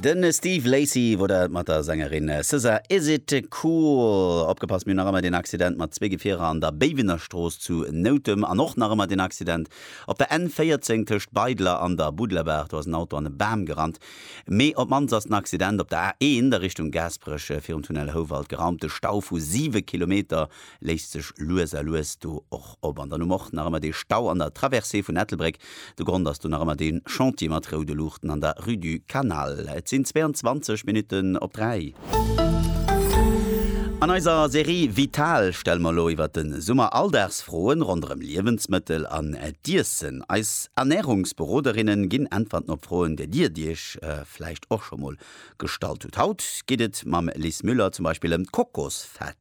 Den Steve Lacy wor dat mat der Sängerin SZA Is It Cool. Opgepasst, mir hunn nach ëmmer deen Accident mat zwee Gefierer an der Béiwenerstrooss zu Noutem an och nach ëmmer deen Accident op der N 14 tëscht Beidler an der Buddlerbaach. Do ass en Auto an e Bam gerannt. Mee op d'mannst ass den Accident op der A 1 a Richtung Gaasperech virum Tunnel Houwald geraumt. De Stau vu siwe Kilometer léisst sech lues a lues do och op. An dann hu mer och nach ëmmer dee Stau an der Traversée vun Ettelbréck. De Grond ass do nach ëmmer dee Chantier mat roude Luuchten an der Rue du Canal. Et sinn 22 Minutten op 3. An eiser Serie Vital stelle mer elo iwwer de Summer Alldagsfroen ronderëm Liewensmëttel an d'Iessen. Eis Ernärungsberoderinne ginn Äntwerten op Froen, där Dir Iech vläicht och scho mol gestallt hutt. Haut geet et mam Lis Müller zum Beispill ëm d'Kokosfett.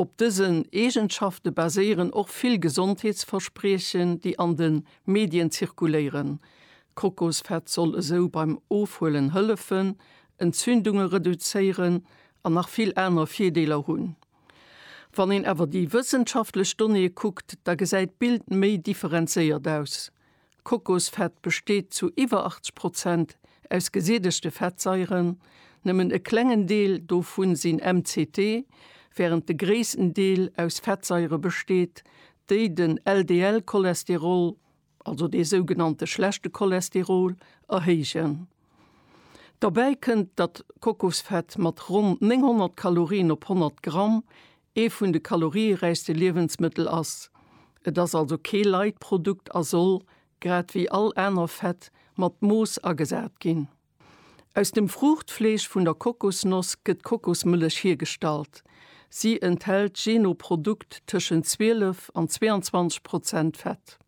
Op dësen Eegenschafte baséieren och vill Gesondheetsverspriechen, déi an de Medien zirkuléieren. Kokosfett soll esou beim Ofhuelen hëllefen, Entzündunge reduzéieren an nach vill aner Virdeeler hunn. Wann een awer déi wëssenschaftlech Donnéeë kuckt, da gesäit d'Bild méi differenzéiert aus. Kokosfett besteet zu iwwer 80 Prozent aus gesiedegte Fettsaieren, nëmmen e klengen Deel dovu sinn MCT, wärend de gréissten Deel aus Fettsaiere besteet, déi den LDL-Cholesterol, also dee sougenannte schlechte Cholesterol, erhéijen. Derbäi kënnt, datt Kokosfett mat ronn 900 Kalorien op 100 Gramm ee vun de kalorieräichste Liewensmëttel ass. Et ass also kee light Produkt a soll, grad wéi all aner Fett, mat Mooss agesat ginn. Aus dem Fruuchtfleesch vun der Kokosnoss gëtt d'Kokosmëllech hiergestallt. Si enthält jee no Produkt tëschent 12 an 22 Prozent Fett.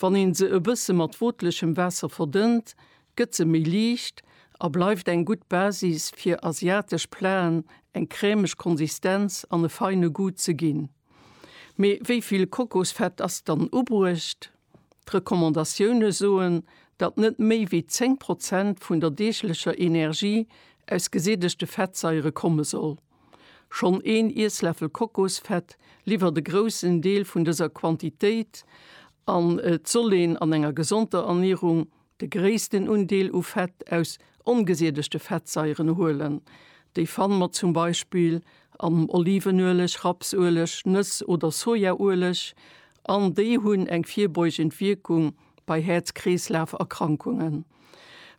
Wann ee se e bësse mat wootlechem Waasser verdënnt, Gëtt se méi liicht a bleift eng gutt Basis fir asiatesch Platen eng crèmeg Konsistenz an e feine Goût ze ginn. Mee wéi vill Kokosfett ass dann ubruecht? D'Recommandatioune soen, datt net méi wéi 10 Prozent vun der deeglecher Energie aus gesättegte Fettsaiere komme soll. Schonn een Iessläffel Kokosfett liwwert e groussen Deel vun dëser Quantitéit an et soll een an enger gesonder Ernierung De gréissten Undeel u Fett aus ongesiedegte Fettsaieren huelen. Déi fanne mer zum Beispill am Olivenueleg, Rapsueleg, Nëss oder Sojaueleg an déi hunn eng virbeugend Wierkung bei Häerz-Kreeslaf-Erkrankungen.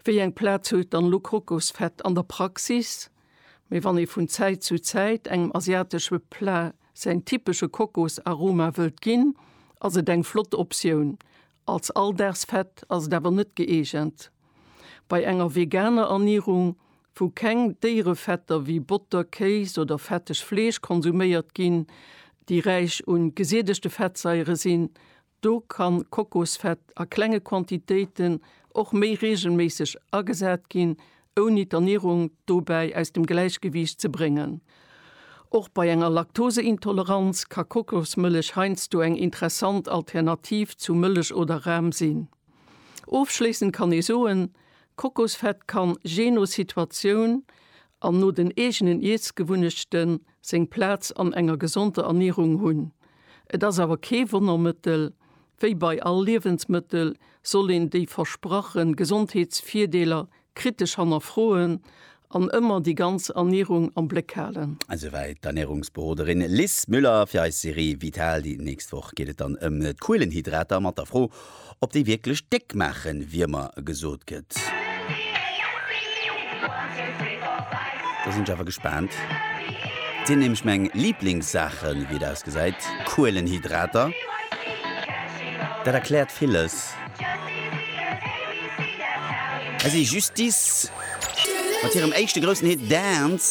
Wéi eng Plaz huet dann elo Kokosfett an der Praxis? Mee wann ee vun Zäit zu Zäit engem asiatesche Plat säin typesche Kokosaroma wëllt ginn, ass et eng flott Optioun Als Alldagsfett ass et awer net gëeegent. Bei enger veganer Ernierung, wou keng Déierefetter wéi Botter, Kéis oder fetteg Fleesch konsuméiert ginn, déi räich un gesiedegte Fettsaiere sinn, do ka Kokosfett a klenge Quantitéiten och méi reegelméisseg agesat ginn, ouni d'Ernierung dobäi aus dem Gläichgewiicht ze bréngen. Och bei enger Laktoseintoleranz ka Kokosmëllech heiansdo eng interessant Alternativ zu Mëllech oder Ram sinn. Ofschléissend kann ee soen, Kokosfett kann, jee no Situatioun an no den eegenen Iessgewunnechten, seng Plaz an enger gesonder Ernierung hunn. Et ass awer kee Wonnermëttel, Wéi bei all Liewensmëttel soll een déi versprache Gesondheetsvirdeeler kritesch hannerfroen an ëmmer déi ganz Ernierung am Bléck halen. Esouwäit d'Ernärungsberoderin Liz Müller fir eis Serie Vital. Déi nächst Woch geet et dann ëm d'Kuelenhydrater mat der Fro, ob déi wierklech déck maachen, wéi ëmmer gesot gëtt. Do sinn ech awer gespaant. Dat sinn nämlech meng Liblingssaachen, wéi et ausgesäit, Kuelenhydrater. Dat erkläert villes. Hei si Justice mat hirem éischte groussen Hit Dance.